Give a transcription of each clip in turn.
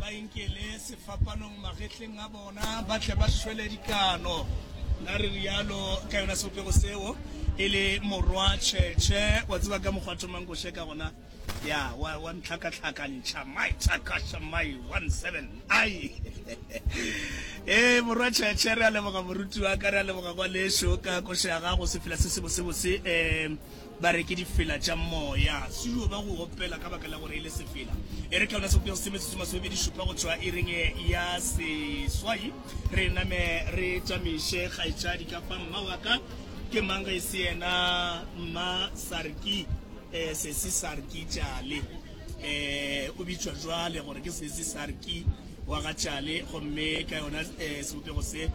ba inkele sefapanong magetleng a bona ba tle ba šwele dikano na re rialo ka yona sebopego seo e le morwa tšhetšhe wa tseba ka mokgwa thomang ko sheka gona ya wa wa ntlhakatlhakantšha my takasha my 17 ai ee morwa tšhetšhe re a leboga moruti wa ka re a leboga kwa lešo ka košo ya gago sefela se sebosebose um Ba re ke difela tša moya. Se yo ba go opela ka baka la gore e le sefela. E re ka yona sebopego se metsotso masomebedi šupa go tšwa iring ya seswai. Re name re tšamiše kgaetšadi ka fa. Mma wa ka ke mang ge e se yena Mma Sarki, eh, Sesi Sarki Tšale. Eh, o bitšwa jwale gore ke Sesi Sarki. wa ga Tšale, gomme ka yona eh, sebopego se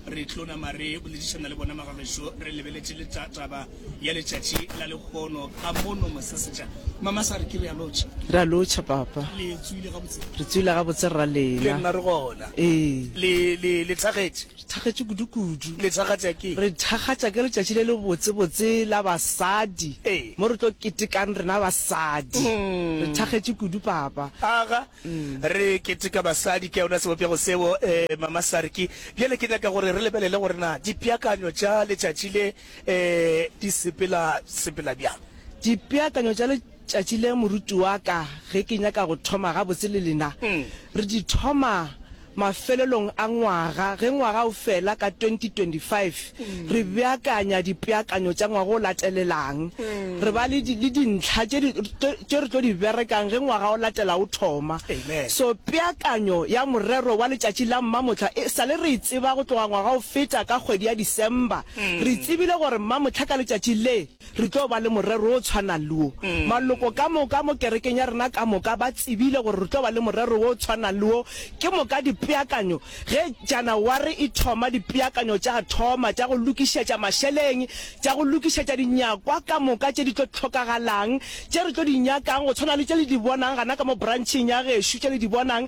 re tlo nama re boledišana le bona magagešo re lebeletše le ta- taba ya letšatši la lekgono ka mono mosesetša mama sa re ke re ya lotšha re a lotšha papa le tswile gabotse re tswile gabotse rra le lena nna re gona ee le le le tlhagetše re thagetše kudukudu le tlhagatša ke re thagatša ke letšatši le le botsebotse la basadi Ee. mo re tlo ketekang rena basadi Mm. re thagetše kudu papa aga Re keteka basadi ka yona sebopego seo, ee, Mama Sarki. Bjale ke nyaka gore re lebelele gore na dipeakanyo tša letšatši le, ee, di sepela, sepela bjang. Dipeakanyo tša letšatši le, moruti wa ka, ge ke nyaka go thoma gabotse le lena, re di thoma, Mafelelong a ngwaga, ge ngwaga o fela ka 2025, re beakanya dipeakanyo tša ngwaga o latelelang. Re ba le le dintlha tše tše re tlo di berekang ge ngwaga o latela o thoma. So peakanyo ya morero wa letšatši la Mmamohla e sa le re e tseba go tloga ngwaga o feta ka kgwedi ya December. Re tsebile gore Mmamohla ka letšatši le, Re tlo ba le morero o tshwanang le wo. Maloko ka moka mo kerekeng ya rena ka moka ba tsebile gore re tlo ba le morero wo o tshwanang le wo. Ke moka dipeakanyo, ge Janaware e thoma, dipeakanyo tša thoma tša go lokišetša mašeleng, tša go lokišetša dinyakwa ka moka tše di tlo hlokagalang, tše re tlo di nyakang, go tshwana le tše le di bonang gana ka mo brancheng ya gešu, tše le di bonang.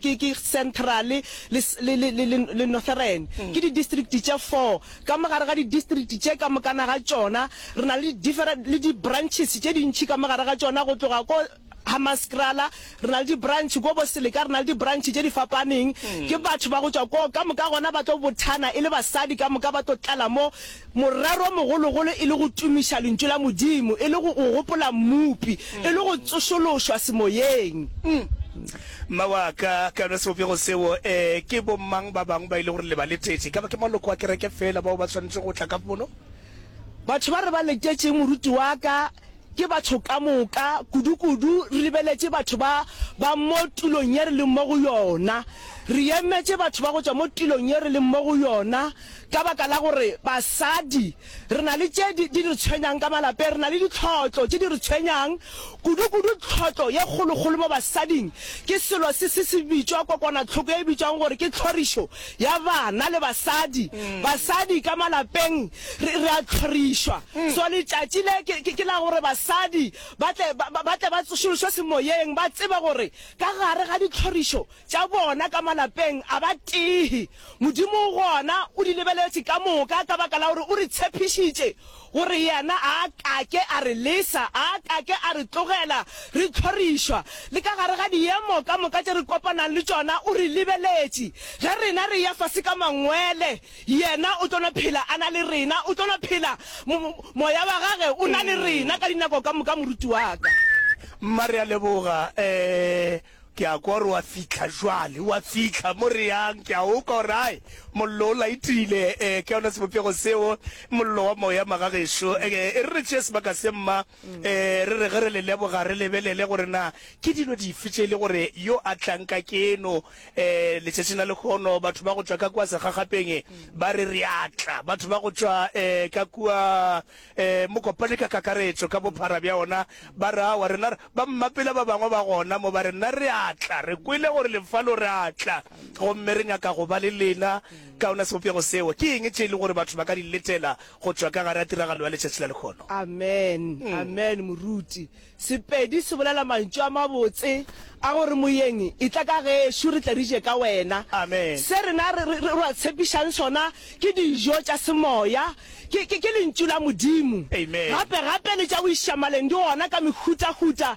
ke, ke Centrale le, le, le, le, le, le Northern. Ke di-district tše four. Ka mo gare ga di-district tše ka mokana ga tšona, re na le di-different, le di-branches tše dintši ka mo gare ga tšona, go tloga ko Hammanskraal re na le di-branch, ko Boselika re na le di-branch tše di fapaneng. Ke batho ba go tšwa koo ka moka gona ba tlo bothana e le basadi ka moka, ba tlo tlala mo. Morero o mogologolo e le go tumiša Lentšu la Modimo, e le go go gopola Mmopi, e le go tsošološwa semoyeng. Mma wa ka, ka yona sebopego seo, ee, ke bomang ba bangwe ba e le gore le ba letetše? E ka ba ke maloko a kereke feela bao ba swanetšego go tla ka pono? Batho ba re ba letetše moruti wa ka. Ke batho ka moka, kudukudu re lebeletše batho ba ba mo tulong ye re leng mo go yona. Re emetše batho ba go tšwa mo tulong ye re leng mo go yona ka baka la gore basadi re na le tše di re tshwenyang ka malapeng, re na le ditlhotlo tše di re tshwenyang. Kudukudu tlhotlo ye kgolokgolo mo basading ke selo se se se bitšwa kokwana-tlhoko ye e bitšwago gore ke tlhorišo ya bana le basadi. Basadi ka malapeng Re, re a hlorišwa. So letšatši le ke, ke, ke la gore basadi ba tle ba, ba, ba tle ba tsošološwe semoyeng, ba tsebe gore ka gare ga dihlorišo tša bona ka malapeng a ba tee. Modimo o gona, o di lebeletše ka moka, ka baka la gore o re tshepišitše gore Yena a ka ke a re lesa, a ka ke a re tlogela re hlorišwa. Le ka gare ga diemo ka moka tše re kopanang le tšona, o re lebeletše. Ge rena re ya fase ka mangwele, Yena o tlo no phela a na le rena, o tlo no phela, mo, Moya wa Gage o na le rena ka dinako ka moka, moruti wa ka. Mma, re a leboga. E, ke a kwa gore o a fihla jwale. O a fihla mo re yang. Ke a o kwa gore, Ai, Mollo o laetile. E, ke yona sebopego seo, Mollo wa Moya, magagešo. E, e re re tšee sebaka se, mma. Ee, re re ge re le leboga, re lebelele gore na ke dilo dife tše e le gore yo a tlang ka keno. Um letšatšing la lekgono batho ba go tšwa ka kua segagapeng ba re re a tla, batho ba go tšwa um ka kua um mokopane ka kakaretšo ka bophara bja ona ba re awa, rena ba mmapela ba bangwe ba gona mo ba re nna re a tla, re kwele gore le fa lo re a tla gomme re nyaka go ba le lena ka ona sebopego seo. Ke eng tše e le gore batho ba ka di letela go tšwa ka gare ga tiragalo ya letšatši la lekgono. Amen, amen, moruti. Sepedi se bolela mantšu a mabotse a gore, Moyeng, itla ka gešo, re tle re je ka wena. Amen. Se rena re, re, re ba tshepišang sona ke dijo tša semoya, ke, ke, ke Lentšu la Modimo. Amen. Gape, gape le tša boišamaleng di gona ka mehutahuta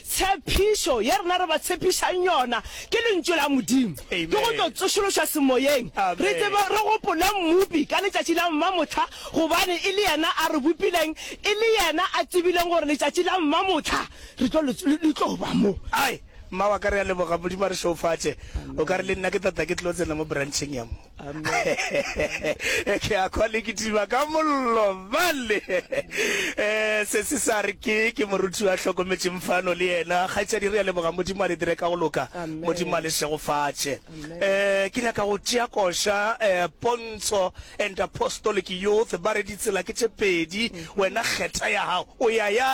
Tshepišo ye rena re ba tshepišang yona ke Lentšu la Modimo, ke go tlo tsošološwa semoyeng, re tsebe re gopole Mmopi ka letšatši la Mmamohla, gobane e le Yena a re bopileng, e le Yena a tsebileng gore letšatši la Mmamohla re tlo le, le tlo ba mo. Ai, mma wa ka, re a leboga. Modimo a re šeofatše. O ka re, Le nna ke tata, ke tlilo tsena mo brancheng ya mo. ke a kwa le kitima ka mollo bale um se se sa re ke ke moruti wa hlokometseng fano le yena kgaitšadi re ya leboga modimo a le dire ka go loka modimo a le segofatše um eh, ke nyaka go tšea koša um pontsho and apostolic youth ba re ditsela ke tše pedi mm-hmm. wena kgetha ya gago o ya ya